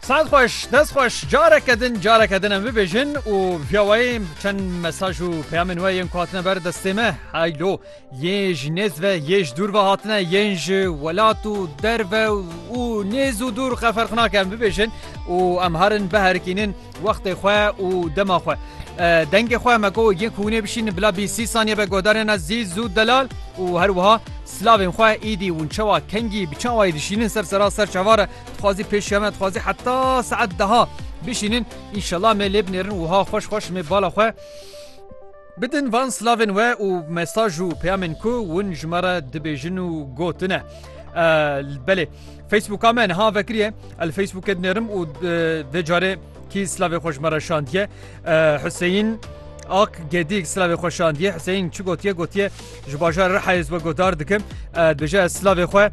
Saet xweş dest xweş careke din careke din em bibêjin û piyawayê çend mesaj û peyamên we yên kuhatine ber destê me heylo yê ji nêz ve yê ji dûr ve hatine yên ji welat û derve û nêz û dûr qeferxnake em bibêjin û em herin biherikînin Wextê xwe û dema xwe. Dengê xwe me ku yên ku hûnê bişînin bila bî sî saniye be guhdarên Ezîz û Delal û her wiha silavên xwe îdî hûn çawa kengî bi çawayî dişînin ser sera ser çavar e dixwazî pêşiya me dixwazî heta saet deha bişînin înşela me lê binêrin wiha xweş xweş mê bala xwe Bidin van slavên we û mesaj û peyamên ku win ji me re dibêjin û gotine. Belê Facebooka me niha vekiriye el Facebookê dinêrim û vê carê kî slavê xwe ji me re şandiye Huseyîn Ak gedîk slavê xwe şandiye Huseyîn çi gotiye gotiye ji bajar Rihayê we godar dikim dibêje ez slavê xwe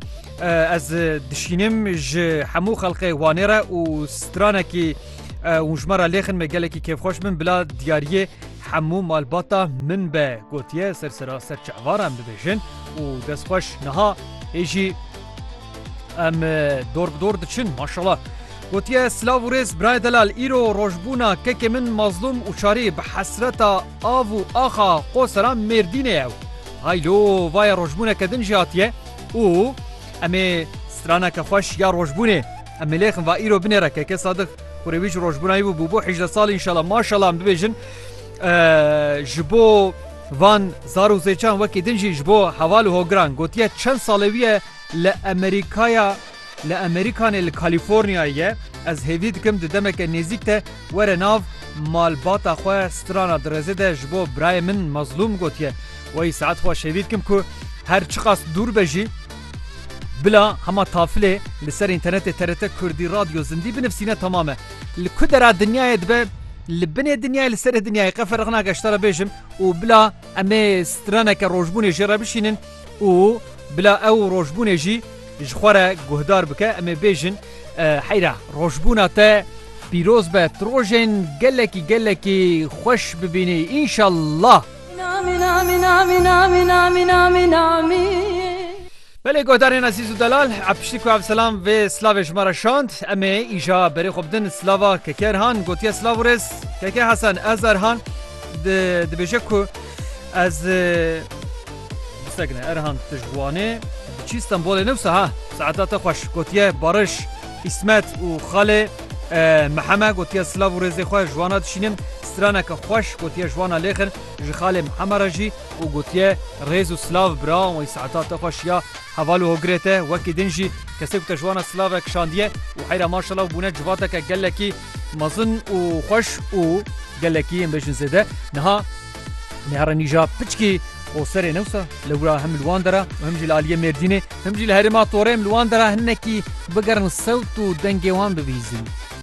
ez dişînim ji hemû xelqê wanê re û stranekî û ji me re lêxin me gelekî kêfxweş min bila diyariyê Hemû malbata min be gotiye ser sera ser çevaran bibêjin û destxweş niha ê jî em dor bi dor diçin maşala. Gotiye silav û rêz birayê delal îro rojbûna kekê min mazlûm û çarî bi hesreta av û axa xwe sera mêrdînê ye û hay lo vaye rojbûneke din jî hatiye û em ê straneke xweş ya rojbûnê Em milêxin va îro binê re keke Sadık kurê wî ji rojbûnayî bû bûbû hejde salî inşallah maşallah em bibêjin ji bo van zar û zêçan wekî din jî ji bo heval û hogiran gotiye çend salê wî ye li Amerîkaya li Amerîkanê li Kalîforniyayê ye ez hêvî dikim di demeke nêzîk de were nav malbata xwe strana dirêzê de ji bo birayê min mezlûm gotiye wayî saet xwe şêvî dikim ku her çiqas dûr be jî Bila hema tafilê li ser înternetê TRT Kurdî Radyo Zindî binivsîne temam e. Li ku dera dinyayê dibe li binê dinyayê li serê dinyayê qe ferq nake ji te re bêjim û bila em ê straneke rojbûnê jê re bişînin û bila ew rojbûnê jî ji xwe re guhdar bike em ê bêjin heyra rojbûna te pîroz be tu rojên gelekî gelekî xweş bibînî înşellah. Belê guhdarên ezîz û delal, a piştî ku Evselam vê silavê ji me re şand, em ê îja berê xwe bidin silava Keke Erhan, gotiye silav û rêz Keke Hesen, ez Erhan dibêje ku ez Erhan tu ji wanê diçî Stenbolê ne wisa ha, saeta te xweş, gotiye Barış. Îsmet û xalê Miheme gotiye silav û rêzê xwe ji wana dişînim, straneke xweş gotiye ji wana lêxin ji xalê Miheme re jî û gotiye rêz û silav birawan wî saeta te xweş ya heval û hogirê te wekî din jî kesê ku te ji wana silav re kişandiye û heyra maşallah û bûne civateke gelekî mezin û xweş û gelekî em bêjin zêde niha Nihare nîja piçkê Qoserê ne wisa li wira him li wan dera û him jî li aliyê Mêrdînê him jî li herêma Torê em li wan dera hinekî bigerin sewt û dengê wan bibihîzin.